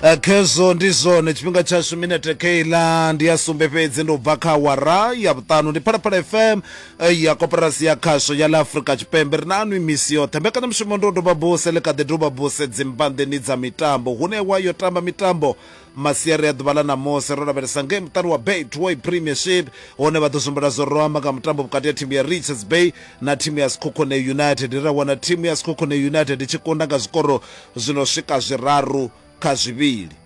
Eh, khezwo ndi zwone tshifhinga tshashu minete keiḽa ndi ya sumbe fhedzi ndi u bva kha wara ya vhuṱanu ndi phalaphala fm eh, ya koporasi ya khasho ya ḽa afrika tshipembe ri na anwi misi yoṱhe mbekanyamushumo ndi u doba buse ḽi kha ḓi doba buse dzimbanḓeni dza mitambo hune wa yo tamba mitambo masiari a ḓuvha ḽa ṋamusi ro lavhelesa ngei muṱani wa betway premiership hone vha ḓo zwimbula zwo ro amba nga mutambo vhukati ha thimu ya richards bay na thimu ya sikhokhone united ra wana thimu ya sikhokhone united i tshi kunda nga zwikoro zwi no swika zwiraru kha zwivhili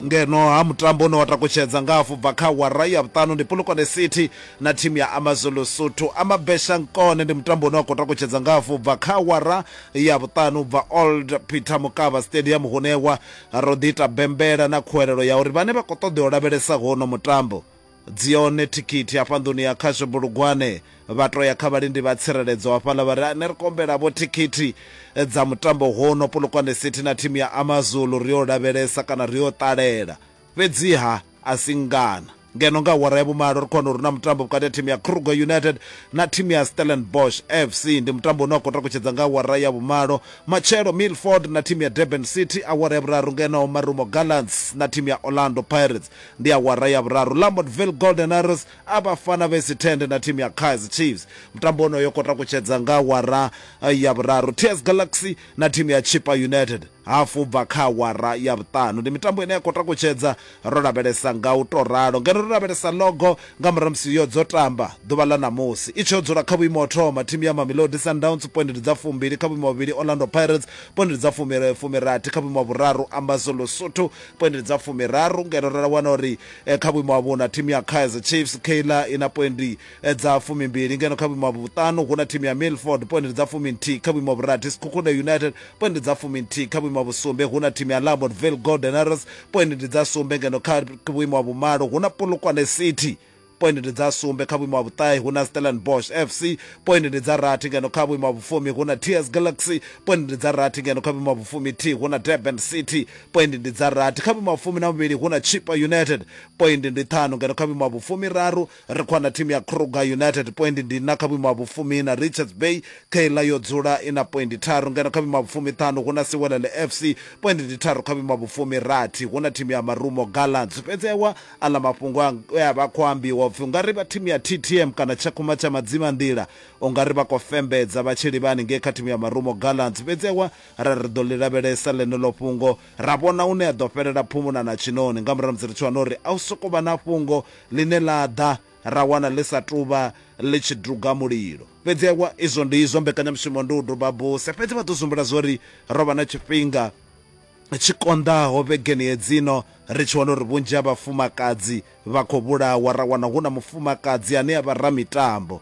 ngeno ha mutambo une wa takutshedza nga afho bva kha wara ya vhuṱanu ndi polokwane city na thimu ya amazulu suthu amabesha nkone ndi mutambo une wa khou takutshedza nga afho bva kha wara ya vhuṱanu bva old peter mukava stadium hunewa Ro ḓi ita bembela na khuwelelo ya uri vhane vha khou ṱoḓea u lavhelesa huno mutambo, dzi hone thikhithi hafha nḓuni ya khasho Bulugwane, vha tou ya kha vhalindi vha tsireledzo hafhaḽa vha ri, Ni ri kombela-vho thikhithi dza mutambo huno, Polokwane City na thimu ya AmaZulu, ri yo u lavhelesa kana ri yo u ṱalela. Fhedzi-ha, a si ngana. ngeno nga awara ya vhumalo ri khona uri na mutambo vhukati ha thimu ya kruger united na thimu ya stellenbosch fc ndi mutambo une wa khou takutshedza nga awara ya vhumalo matshelo milford na thimu ya durban city awara ya vhuraru ngeno marumo gallants na thimu ya orlando pirates ndi awara ya vhuraru lamodville golden arrows a vhafana vhesi tende na thimu ya kaizer chiefs mutambo onoyo khou takutshedza nga awara eh, ya vhuraru ts galaxy na thimu ya chipa united hafhu u bva kha awara ya vhuṱanu. Ndi mitambo ine ya khou takutshedza ro lavhelesa nga u tou ralo. Ngeno ro lavhelesa logo nga murahu ha musi yo dzo tamba ḓuvha ḽa ṋamusi. I tshee u dzula kha vhuimo ha u thoma, thimu ya Mamelodi Sundowns poindi ndi dza fumbili kha vhuimo ha vhuvhili, Orlando Pirates poindi ndi dza fumi, fumirathi kha vhuimo ha vhuraru, Ambazoulu Sotho poindi ndi dza fumiraru ngeno ra wana uri kha vhuimo ha vhuṋa thimu ya Kaizer Chiefs, Kayla, i na poindi eh, dza fumimbili ngeno kha vhuimo ha vhuṱanu hu na thimu ya milford poindi dza fuminthihi kha vhuimo ha vhurathi sikhukhune united poindi dza fuminthihi kha vhuimo ha vhusumbe hu na thimu ya lamodville golden arrows poindi ndi dza sumbe ngeno kha vhuimo ha vhumalo hu na polokwane city poindi ndi dza sumbe kha vhuimo ha vhuṱahe hu na stellenbosch fc poindi ndi dza rathi ngeno kha vhuimo ha vhufumi hu na ts galaxy poindi ndi dza rathi ngeno kha vhuimo ha vhufumi t hu na durban city poindi ndi dza rathi kha vhuimo ha vhufumi na vhuvhili hu na chipa united poindi ndi ṱhanu ngeno kha vhuimo ha vhufumi raru Ri khou wana thimu ya Kruger United poindi ndi iṋa kha vhuimo ha vhufumi-iṋa. Richards Bay kha iḽa yo dzula i na poindi tharu ngeno kha vhuimo ha vhufumi-ṱhanu hu na Siwelele FC poindi ndi tharu kha vhuimo ha vhufumi-rathi hu na thimu ya Marumo Gallants. Fhedzi ewa aḽa mafhungo e a vha a khou ambiwa u pfi u nga ri vha thimu ya TTM kana Tshakhuma tsha Madzimanḓila u nga ri vha khou fembedza vha tshi livha haningei kha thimu ya Marumo Gallants. Fhedzi ewa ra ri ri ḓo ḽi lavhelesa ḽeneḽo fhungo ra vhona hune a ḓo fhelela phumula na tshiṋoni nga murahu ha musi ri tshi wana uri a hu sokou vha na fhungo Ḽine ḽa ḓa ra wana ḽi sa tou vha ḽi tshi duga mulilo. Fhedzi ewa, izwo ndi izwo, mbekanyamushumo ndi u duba buse. Fhedzi vha ḓo zwi humbula zwa uri ro vha na tshifhinga tshi konḓaho vhegeni hedzino ri tshi wana uri vhunzhi ha vhafumakadzi vha khou vhulawa, ra wana hu na mufumakadzi ane a vha ramitambo.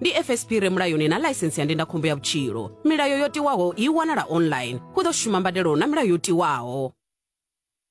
ndi fsp re mulayoni na ḽaisensi ya ndindakhombo ya vhutshilo milayo yo tiwaho i wanala online hu ḓo shuma mbadelo na milayo yo tiwaho